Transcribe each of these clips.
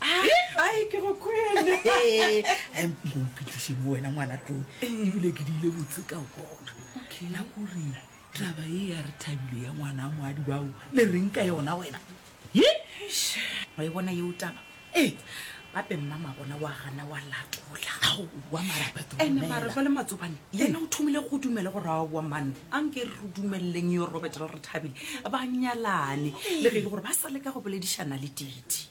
ai ke go kwele mpitlišeng wena ngwana tlong ebile ke diile botse ka gona la kore taba e ya re thabile ya ngwana moadi bao le reng ka yona wena ye wa e bona yeo taba ee gape mma magona wa gana wa latola ene mara jwa le matsobane yena o thomile go dumele go rawa wa manna a nke re dumeleleng yo robert le re thabile ba nyalane le ge e le gore ba sa leka go boledišana le titi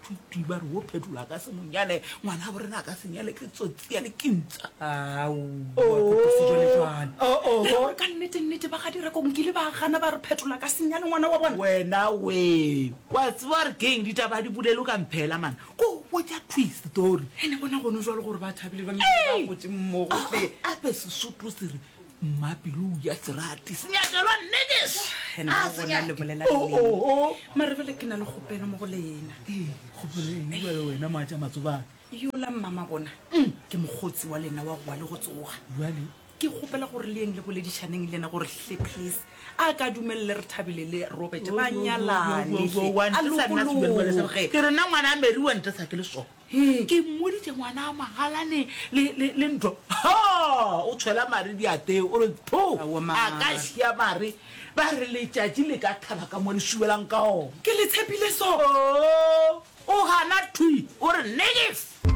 Phuti, ba re wo Phetolo a ka se mo nyale, ngwana wa borena a ka se nyale ke tsotsi ya lekintsa. Ao, wa kopa sejwalejwale. Oh, oh, oh, Gore ka nnete nnete ba ga direko nkile ba gana ba re Phetolo a ka se nyale ngwana wa bona. Wena we, wa tseba gore keng ditaba a di bulelwe ka mphela man, ko botša twist tori. Ene bona gono jwalo gore ba thabile ba nnile ba gotše mmogo hle. Ape Sesotho se re mma pelo ya serati senyakelwa nnekes Ene a mo bona le bolela Oh, leng. oh, oh. mare bele ke na le kgopelo mo go lena kgopolengwele wena maatša matsobane yola mmama bona ke mokgotsi wa lena wa gowa le go tsoga jale ke kgopela gore le yeng le boledišaneng le ena gore hle please a ka dumelele re thabile le robert ba nyalane hle, a lokologe ke rena ngwana a mary wa ntesa ke le sona Hee, ke mmoditše ngwana a magalane le, le, le ntho. Ha! O tshwela mare diateo, o re, Pho! Aowa, mama. A ka šia mare, ba re letšatši le ka thaba ka mo le šubelang ka ona. Ke le tshepile so. Oo! O gana thwi, o re, Negif!